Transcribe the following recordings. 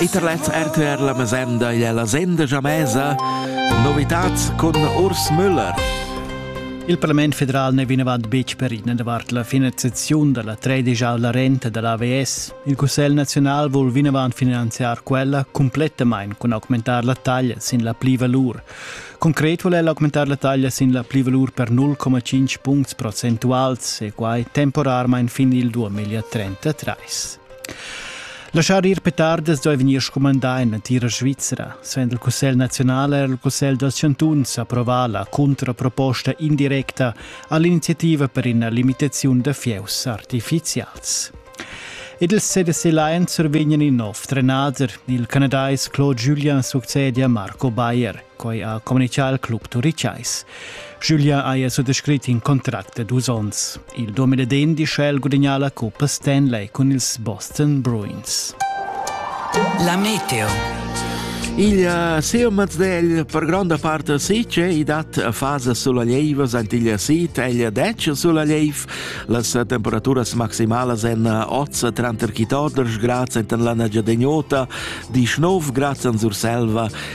E tar lez RTR la mesenda igl è la senda gia mesa. Novitads cun Urs Müller. Il Parlament federal n'è vinavant betg perit davart la finanziaziun da la tredischavla renta da l'AVS. Il Cussegl naziunal vul vinavant finanziar quella cumplettamain cun augmentar la taglia sin la plivalur. Concret vul el augmentar la taglia sin la plivalur per 0,5 puncts procentuals e quai temporarmain fin il 2033. Laschar ir petardas duai vegnir scumandà en l'entira Svizra. Sven il Cussegl naziunal er il Cussegl dals chantuns approvà la contraproposta indirecta a l'iniziativa per ina limitaziun da fieus artifizials. Ed il CDC Lion survegnan in nov trenader. Il canadais Claude Julien succede a Marco Bayer. Quai ha communitgà il club turitgais. Giulia haja suttascrit in contract da dus onns. Il 2010 ha el gudagnà la cuppa Stanley cun ils Boston Bruins. La meteo. Il eh, siu mazzel per gronda part sice i dat fasa sulla lieva ant il sit el dec sulla lief las temperaturas maximalas en oz tranter chitoders grazie en la giadegnota di 9 grazie an Surselva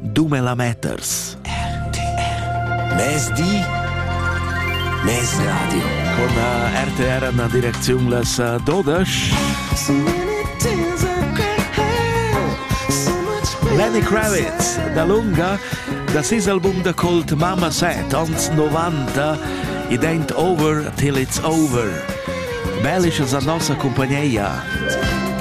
Dumelameters. RTR. Mezdi Mes Radio. Con eh, RTR an direcziun las eh, dodash. Lenny Kravitz, da lunga, das ist album da Kult Mama Set, ans 90, it ain't over till it's over. Bellisch es a nossa compagneia.